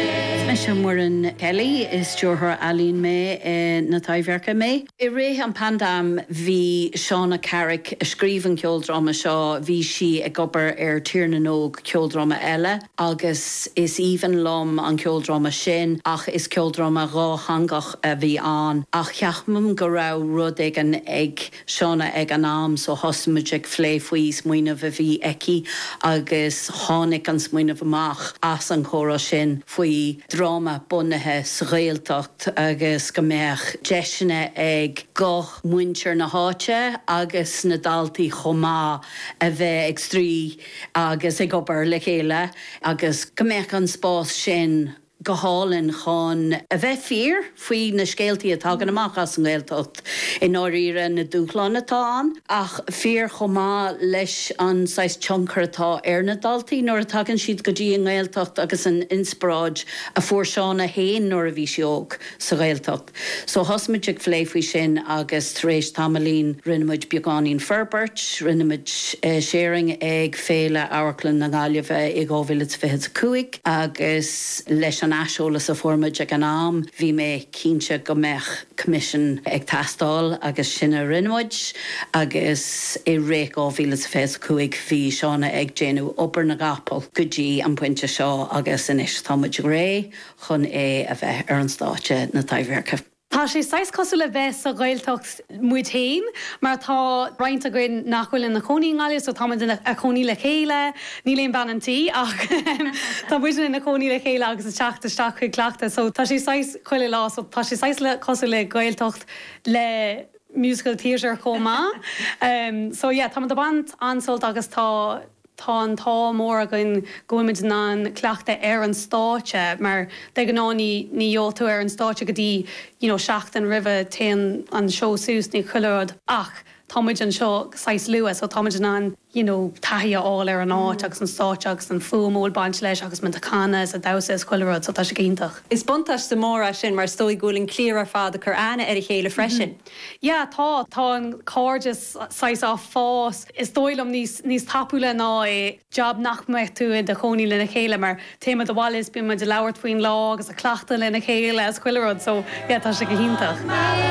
Is mise Muireann Kelly, is Stiúrthóir Ealaíon mé na Taibhdhearca mé. I rith an phaindéim bhí Shauna Carrick, a scríobh an ceoldráma seo, bhí sí ag obair ar Tír na nÓg, ceoldráma eile, agus is aoibhinn liom an ceoldráma sin ach is ceoldráma dhátheangach a bhí ann ach ceapaim go raibh rud éigin ag Shauna ag an am so thosaigh muid ag phlé faoi smaoineamh a bhí aici agus tháinig an smaoineamh amach as an gcomhrá sin faoi dráma bunaithe sa Ghaeltacht agus go mbeadh deiseanna ag guth mhuintir na háite agus na daltaí chomh maith a bheith ag scríobh agus ag obair le chéile agus go mbeadh an spás sin go hálainn chun a bheith fíor faoi na scéaltaí a tagann amach as an nGaeltacht i ndáiríre, na dúshláin atá ann ach fíor chomh maith leis an saghas tionchar atá ar na daltaí nuair a tagann siad go dtí an nGaeltacht agus an inspioráid a fuair Shauna fhéin nuair a bhí sí óg. sa Ghaeltacht. So thosaigh muid ag phlé faoi sin agus tar éis tamaillín rinne muid beagáinín forbairt, rinne muid sharing ag Féile Amharclainne na Gaillimhe i 2025 agus leis an aiseolas a fuair muid ag an am bhí mé cinnte go mbeadh coimisiún ag teastáil agus sin a rinne muid agus i rith 2025 bhí Shauna ag déanamh obair na gcapall go dtí an pointe seo agus anois tá muid réidh chun é a bheith ar an stáitse na Taibhdhearca. Tá sé saghas cosúil le bheith sa Ghaeltacht muid féin mar tá roinnt againn nach bhfuil ina chónaí i nGaillimh so tá muid ina chónaí le chéile, níl aon bhean an tí ach tá muidne ina chónaí le chéile agus ag teacht isteach chuig cleachtadh so tá sé saghas chuile lá so tá sé saghas like cosúil le Gaeltacht le musical theatre chomh maith. So yeah tá muid ag baint an-sult as agus tá Tá an t-ádh mór againn go bhfuilimid in ann cleachtadh ar an stáitse mar de ghnáth ní faigheann tú ar an stáitse go dtí you know seachtain roimh a théann an seó suas, nó chuile rud ach tá muid anseo saghas luath so táimid in ann you know taithí a fháil ar an áit agus an stáitse agus an fuaim a bhfuil baint leis agus muid a' canadh is a' damhsa is chuile rud so tá sé go hiontach. Is buntáiste mór é sin mar is dóigh go bhfuil an cliar ar fad ag cur aithne ar a chéile freisin. Yeah, tá. Tá an cairdeas saghas ag fás, is dóigh liom, níos tapúla ná i jab nach mbeadh tú i do chónaí lena chéile mar téimid abhaile is bíonn muid ag labhairt faoin lá agus ag cleachtadh lena chéile is chuile rud so yeah tá sé go hiontach.